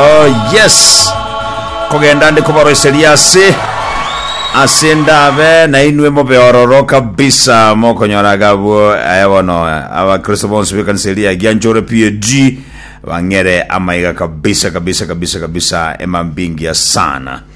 Oh yes! Kogenda nde koboroiseria ase ase ndabe nainwe mobe ororo kabisa mokonyora agabwo aya bono abakristo bonsi b'ekanisa eria ya Gianchore PAG bang'ere amaiga kabisa kabisa kabisa kabisa emambingia sana.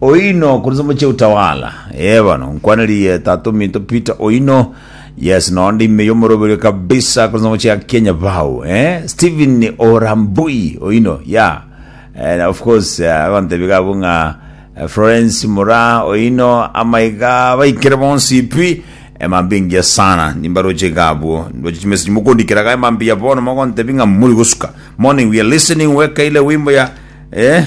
Oino korwa Samuchi Utawala. Ee bono nkwanerie tata ominto Peter Oino. Yes no ndi ime yomoroberio kabisa korwa Samuchi ya Kenya bao. Eh Stephen Orambui Oino. Yeah. Eh, of course eh, agontebi gabu ng'a eh, Florence Mura Oino amaiga baikere bonsi pi emambingia sana nimbaroche gabu ndoche chimesi mukondikira ga emambia bono mogontebi ng'a muri gosuka morning we are listening weka ile wimbo ya eh